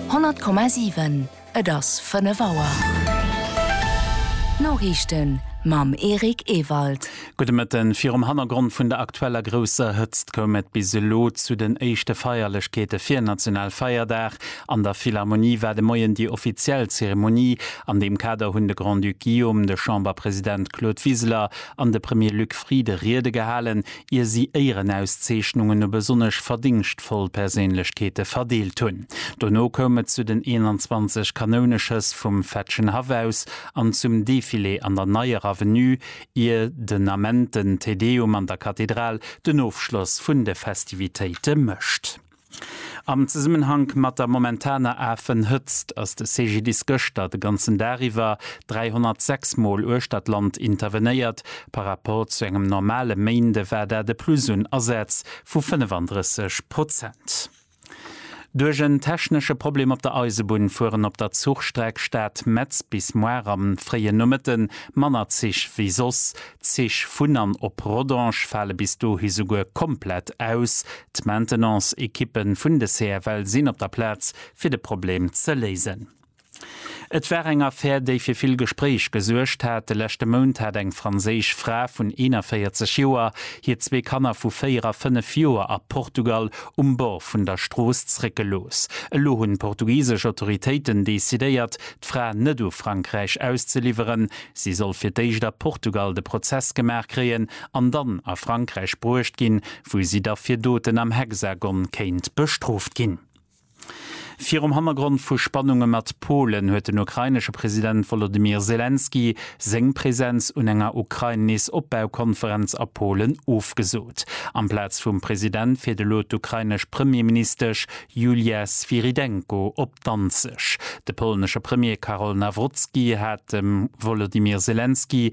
100,7 Et ass 5 Auer. D'Noriichten mam Eric Ewald. Gudde Mëtten. Virum Hannergrond vun der aktueller grousser Hëtzt koum et bis elo zu den éischte Feierlechkeete fir Nationalfeierdag. An der Philharmonie war de Moien déi offiziell Zeremonie. An deem Kader hunn de Grand-Duc Guillaume, de Chamberpresident Claude Wiseler an de Premier Luc Frieden Riede gehalen, ier si Éierenauszeechnungen u besonnesch verdéngschtvoll Perséinlechkeete verdeelt hunn. Dono koum et zu den 21 Kanouneschëss vum Fetschenhaff aus an zum Defilé an der Neier Avenue, ier den Ament den Te Deum an der Kathedral den Ofschloss vun de Festivitéite mécht. Am Zesummenhank mat der momentaner Afenhëtzt ass de CGDIS gëschter de ganzen Dag iwwer 306 Mol uechter d'Land intervenéiert. Par Rapport zu engem normale Méinde war dat e Plus un Asätz vu 35 Prozent. Duerch en technesche Problem op der Eisebunn fueren op der Zuchstreck Stad-Metz bis moar am fréien Nomëtte manner Zich wéi soss. D'Zich vun an op Rodange fale bis dohi souguer komplett aus, D'Maintenance-Ekippe vun de CFL sinn op der Plaz, fir de Problem ze léisen. Et war eng Affär, déi fir vill Gespréich gesuergt hat. De leschte Mount hat eng franséisch Fra vun 41 Joer hir zwee Kanner vu 4 a 5 Joer a Portugal um Bord vun der Strooss zréckgelooss. Elo hunn d'portugisesch Autoritéiten decidéiert, d'Fra net u Frankräich auszeliwweren. Si soll fir d'éischt a Portugal de Prozess gemaach kréien an dann a Frankräich bruecht ginn, wou si da fir Doten am Hexagon kéint bestrooft ginn. Virum Hannergrond vu Spannunge mat Polen huet den ukrainesche President Wolodymyr Selenskyj seng Presenz un enger Ukrain-Nees-Opbau-Konferenz a Polen ofgesot. Amplaz vum President fiert elo d'ukrainesch Premierministesch Julia Svyrydenko op Danzeg. De polnesche Premier Karol Nawrocki hat dem Wolodymyr Selenskyj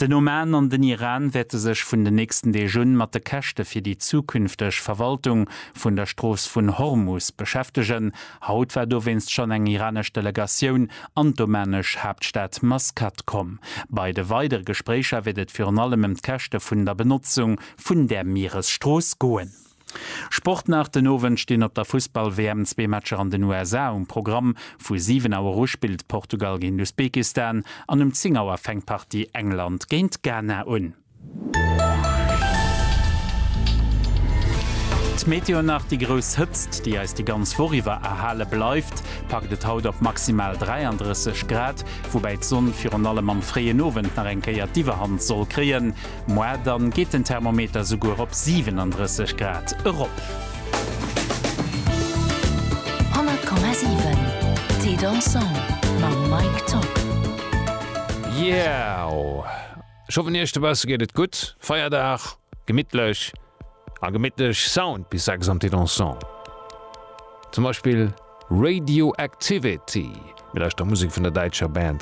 Den Oman an den Iran wäerte sech vun den nächsten Deeg un mat de Käschte fir déi zukünfteg Verwaltung vun der Strooss vun Hormus beschäftegen. Haut war dowéinst schonn eng iranesch Delegatioun an d'omanesch Haaptstad Maskat komm. Bei de weidere Gespréicher wäert et virun allem ëm d'Käschte vun der Benotzung vun där Mieresstrooss goen. Sport nach, Den Owend stinn op der Fussball-WM zwee Matcher an den USA um Programm. Vu 7 Auer u spillt Portugal géint Usbekistan an um 10 Auer fänkt d'Partie England géint Ghana un. D'Meteo nach, Déi grouss Hëtzt, déi eis déi ganz Woch iwwer erhale bleift, packt et haut op maximal 33 Grad, woubäi d'Sonn virun allem am fréien Owend nach eng Kéier d'Iwwerhand soll kréien. Moi, dann geet den Thermometer souguer op 37 Grad erop. 100,7 Thé Dansant mam Mike Top. Yeah! Ech hoffen iech dobausse geet et gutt, Feierdag, gemittlech a gemittlech Sound bis 6 am Thé Dansant. Zum Beispill Radioactivity, mir lauschter Musek vun der däitscher Band.